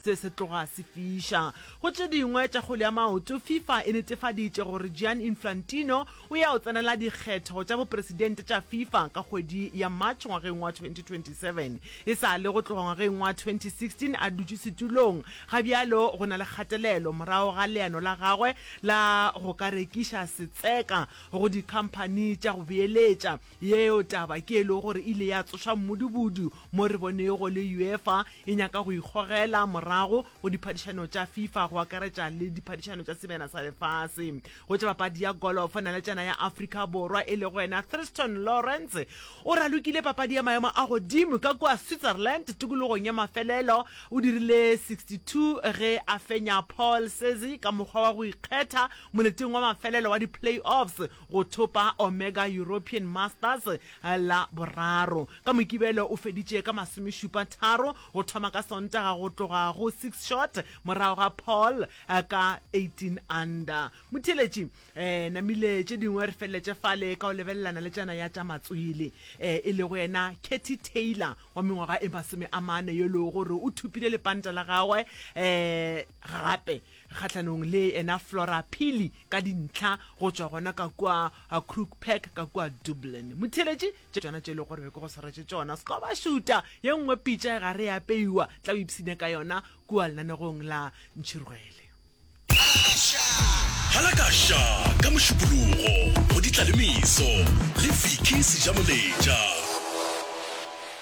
Se se tloga se fiša go tše dingwe tša kgwele ya maoto, Fifa e netefaditše gore Gian Inflantino o ya o tsenela dikgetho tša bopresidente tša Fifa ka kgwedi ya March ngwageng wa 2027. E sa le go tloga ngwageng wa 2016 a dutše setulong, ga bjalo go na le kgatelelo morago ga leano la gagwe la go ka rekiša setseka go dikhamphani tša go beeletša. Yeo taba ke e lego gore e ile ya tsoša mmudubudu mo re bonego le UEFA e nyaka go ikgogela morago go diphadišano tša Fifa go akaretša le diphadišano tša Semena sa Lefase. Go tša papadi ya golofo, naletšana ya Afrika Borwa e lego yena Thriston Lawrence o ralokile papadi ya maemo a godimo ka kua Switzerland tikologong ya mafelelo. O dirile 62 ge a fenya Paul Cesi ka mokgwa wa go ikgetha moleteng wa mafelelo wa di-playoffs. go thopa Omega European Masters la boraro. Ka Mokibelo o feditše ka masomešupa tharo go thoma ka Sontaga go tloga go six shot morago ga Paul ka eighteen under. Motheeletši, eh, namile tše dingwe re feleletše fale ka go lebelelana le tšana ya tša matswele, eh, e lego yena Katie Taylor wa mengwaga e masome a mane yo e lego gore o thopile lepanta la gagwe, eh, gape kgahlanong le ena Flora Phili ka dintlha go tšwa gona ka kua Croke Park ka kua Dublin. Motheeletši, Tše tšona tše e lego gore be ke go swaretše tšona, se ka ba šuta ye nngwe pitša e gare e apeiwa, tla o ipshine ka yona kua lenanegong la Ntšhirwele. Halakasha ka Mošupologo go Ditlalemiso le Vicky Sejamoletša.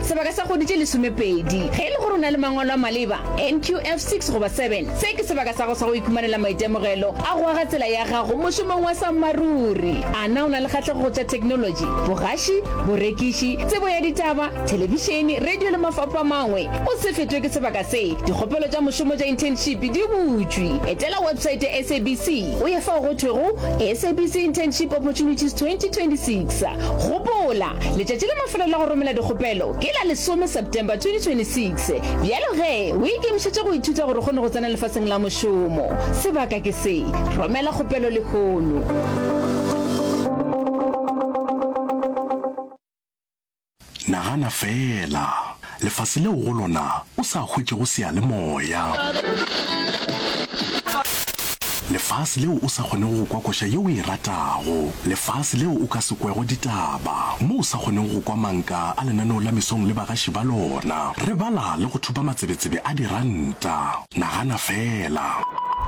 sebaka sa kgwedi tše lesomepedi. Ge e le gore o na le mangwalo a maleba, NQF 6 goba 7, se ke sebaka sa gago sa go ikhumanela maitemogelo a go aga tsela ya gago mošomong wa sammaruri. A na o na le kgahlego go tša theknolotši, bogaši, borekiši, tsebo ya ditaba, thelebišene, radio le mafapho a mangwe? O se fetwe ke sebaka se, dikgopelo tša mošomo tša internship di butšwe. Etela website ya SABC o ye fao go thwego SABC Internship Opportunities 2026. Gopola! Letšatši la mafelo la go romela dikgopelo ke la lesome September 2026. Bjalo ge o ikemišetše go ithuta gore o kgone go tsena lefaseng la mošomo, sebaka ke se. Romela kgopelo lehono. Nagana feela lefase leo go lona o sa hwetšego seyalemoya, lefase leo o sa kgonego go kwa koša yeo o e ratago, lefase leo o ka se kwego ditaba, mo o sa kgonego go kwa manka a lenaneo la mesong le bagaši ba lona, re bala le go thupa matsebetsebe a diranta. Nagana feela!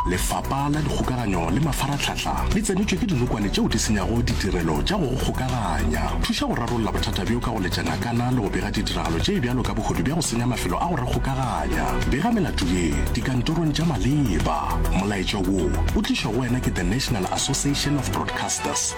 Lefapa la Dikgokaganyo le Mafaratlhatlha le tsenetšwe ke dinokwane tšeo di senyago ditirelo tša go go kgokaganya. Thuša go rarolla bothata bjo ka go letša ngakana le go bega ditiragalo tše bjalo ka bohodu bja go senya mafelo a go re kgokaganya. Bega melato ye dikantorong tša maleba. Molaetša wo o tlišwa go wena ke The National Association of Broadcasters.